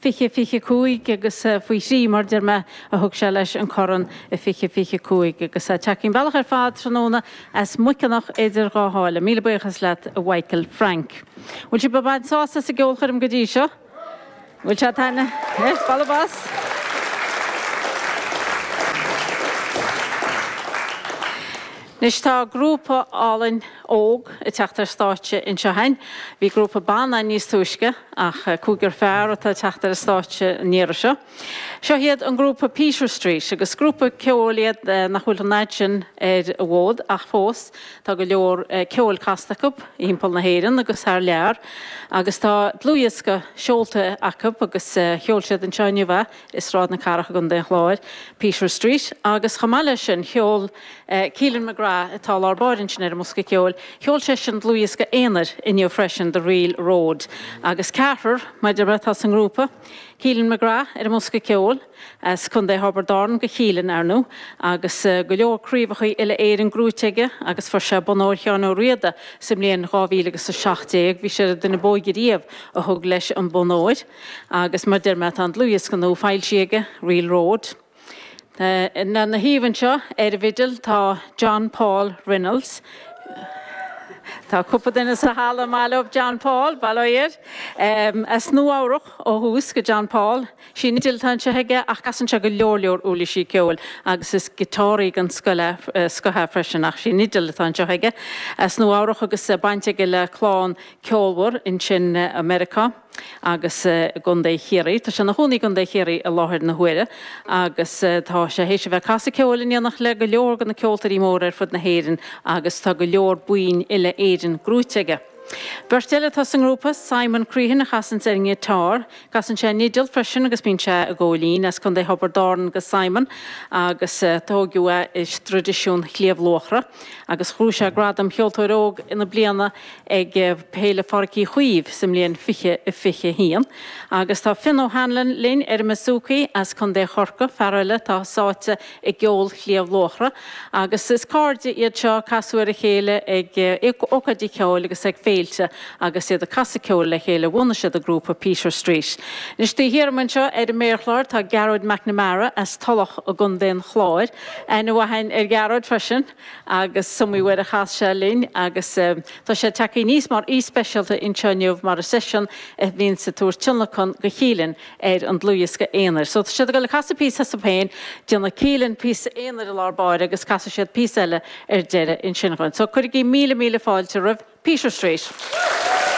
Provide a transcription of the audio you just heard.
fiche fiche cúig agus faoi thrí mar deir mé a thug sé leis an corn i fiche fiche cúig agus tagtha an bealach ar fad tráthnóna as Muiceanach Idir Dhá Sháile. Míle buíochas leat a Mhichael Frank. Bhfuil sibh ag baint sásamh as an gceolchoirm go dtí seo? Bhfuil sé ag taitneamh? Yes, bualadh bos! Anois tá grúpa álainn óg ag teacht ar stáitse anseo chugainn. Bhí grúpa ban ann níos túisce, ach cúigear fear atá ag teacht ar an stáitse an iarraidh seo. Seo iad an grúpa Peter Street, agus grúpa ceoil iad nach bhfuil an fhaid sin ar an bhfód, ach fós tá go leor ceoil casta acu thimpeall na hÉireann agus thar lear, agus tá dlúthdhiosca seolta acu agus sheol siad anseo inniu é. i Sráid na Cathrach i gContae an Chláir, Peter Street, agus chomh maith leis sin sheol Keelan McGrath, atá i lár báire ansin ar an mbosca ceoil, sheol seisean dlúthdhiosca aonair inniu freisin, The Real Road, agus ceathrar mar a deir mé atá sa ngrúpa, Keelan McGrath ar an mbosca ceoil, as Contae Thiobraid Árann do Keelan, ar ndú, agus go leor craobhacha Uile-Éireann gnóthaithe aige agus fuair sé Bonn Óir Sheáin Uí Riada sa mbliain 2017, bhí sé ar an duine b'óige riamh a thug leis an Bonn Óir. Agus mar deir mé tá an dlúthdhiosca nua foilsithe aige, Real Road. Lena thaobh anseo ar an bhfidil tá John Paul Reynolds. Tá cúpla duine sa halla ar maith leo John Paul, bail ó Dhia air. As Nua Eabhrac ó thús do John Paul. Sí an fhidil atá anseo aige ach casann sé go leor leor uirlisí ceoil agus is giotáraí den scoth é freisin ach sí an fhidil atá anseo aige. As Nua Eabhrac agus baint aige le clann ceolmhar ansin i Meiriceá. agus i gContae Chiarraí. Tá sé ina chónaí i gContae Chiarraí i láthair na huaire agus tá sé théis a bheith ag casadh ceoil in éineacht le go leor de na ceoltóirí móra ar fud na hÉireann agus tá go leor boinn uile-Éireann gnóthaithe aige. Beirt eile atá sa ngrúpa, Simon Crehan a chasanns ar an ngiotár, casann sé an fhidil freisin agus bíonn sé ag gabháil fhoinn. As Contae Thiobraid Árann do Simon agus tóigeadh é i dtraidisiún Shliabh Luachra agus ghnóthaigh sé gradam Cheoltóir Óg na Bliana ag Féile Pháirc Uí Chaoimh sa mbliain 2021. Agus tá Fionn O'Hanlon linn ar an mBouzouki as Contae Chorcaí, fear eile atá sáite i gceol Shliabh Luachra. Agus is cairde iad seo, casadh ar a chéile ag ócáidí ceoil agus ag féilte agus iad ag casadh ceoil le chéile bhunaigh siad an grúpa Peter Street. Anois taobh thiar uaim anseo ar an méarchlár tá Gearóid McNamara as Tullach i gContae an Chláir. Aithne mhaith a'inn ar Ghearóid freisin. agus is iomaí uair a chas sé linn agus tá sé ag teacht aníos mar aoi speisialta anseo inniu mar is eisean a bhíonns ag tabhairt tionlacan go Keelan ar an dlúthdhiosca aonair. So tá siad ag goil ag casadh píosa astu féin, déanfaidh Keelan píosa aonair i lár báire agus casfaidh siad píosa eile ar deireadh ansin dhúinn. So cuirigí míle míle fáilte roimh Peter Street.